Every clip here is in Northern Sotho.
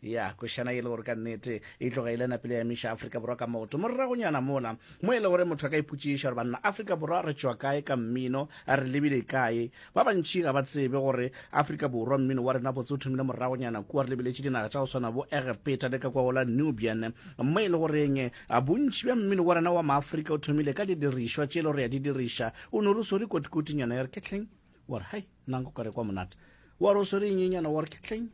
Ya, košana e le gore ka nnete e tloga e le napile ya miša Afrika Borwa ka moto. Morragonyana mola, mo e le gore motho a ka ipotšiša gore banna Afrika Borwa re tšwa kae ka mmino, a re lebile kae. Ba bantši ga ba tsebe gore Afrika Borwa mmino wa rena botse o thomile morragonyana kua re lebeletše dinaga tša go swana bo Egepeta le ka kwa go la Nubian. Mo e le goreng bontši bja mmino wa rena wa Maafrika o thomile ka didirišwa tše e le gore re a di diriša. O no re swere kotikoti nyana ya re ketleng, wa re hai. nna nka kware kwa monate wa re o swere nyenyana wa re ke tleng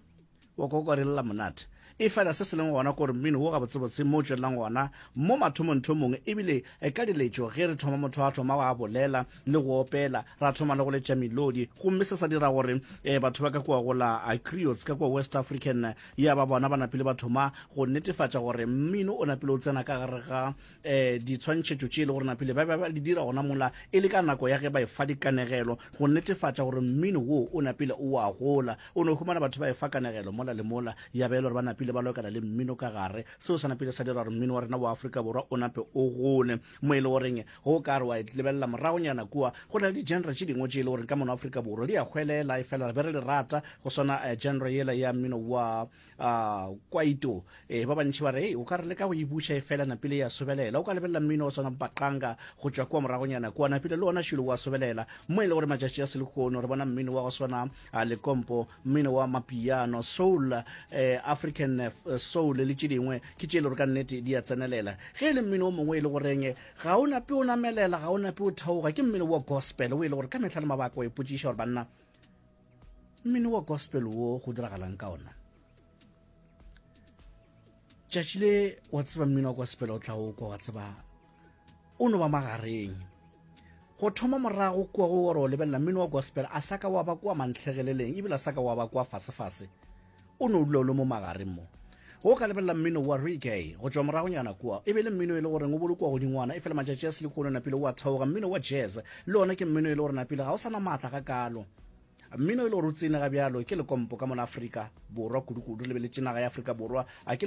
wa kwa kware lela monate e fela se se leng gona gore mmino wo gabotsebotse mo o tswelelang gona mo mathomong thomong ebile e ka diletšo ge re thoma motho a thoma go a bolela le go opela ra thoma le go letša melodi gomme se sa dira gore um batho ba ka kua gola criots ka kua west african ya ba bona ba napile ba thoma go netefatša gore mmino o napile o tsena ka gare ga eh ditshwantšhetšo tše e le gore napile ba ba di dira gona mola e le ka nako ya ge ba efa dikanegelo go netefatša gore mmino wo o napile o a gola o ne humana batho ba efa kanegelo mola le mola ya ba e le gore ba napile ba lokela le mmino ka gare seo sa napile sa dira gore mmino wa rena wa Afrika Borwa o nape o gole mo e le goreng go ka re wa e lebelela moragonyana kua go na le di-genre tše dingwe tše e le gore ka mono Afrika Borwa di a hwelela e fela re be re le rata go swana eh, genre yela ya mmino wa a kwaito e ba bantši ba re o ka re leka go e buša e fela napile ya sobelela o ka lebelela mmino o tshwana baqanga go tšwa kua moragonyana kua napile le ona šilo wa sobelela mo e le gore matšatši a selekono re bona mmino wa go swana a lekompo mmino wa mapiano soul eh, african eh, soul le tše dingwe ke tše e le gore ka nnete di a tsenelela ge e le mmino o mongwe e le goreng ga o nape o namelela ga o nape o theoga ke mmino wa gospel o e le gore ka mehla le mabaka o e potšiša gore banna mmino wa gospel wo go diragalang ka ona tšatši le wa tseba mmino wa gospel o tla o kwa wa tseba o no ba magareng go thoma morago kua go gore o lebelela mmino wa gospel a sa ka wa ba kua mantlhegeleleng ebile a sa ka wa ba kua fasefase o no dula o le mo magareng mo go ka lebelela mmino wa reggae go tšwa moragonyana kua e be le mmino e le goreng o bolokwa godingwana e fela matšatši a selikono o napile wa theoga mmino wa jazz le one ke mmino e le gore napile ga o sana maatla ga kalo mmino e le gore o tsene ga bjalo ke lekompo ka mona afrika borwa kudukudu lebeletše naga ya afrika borwa a ke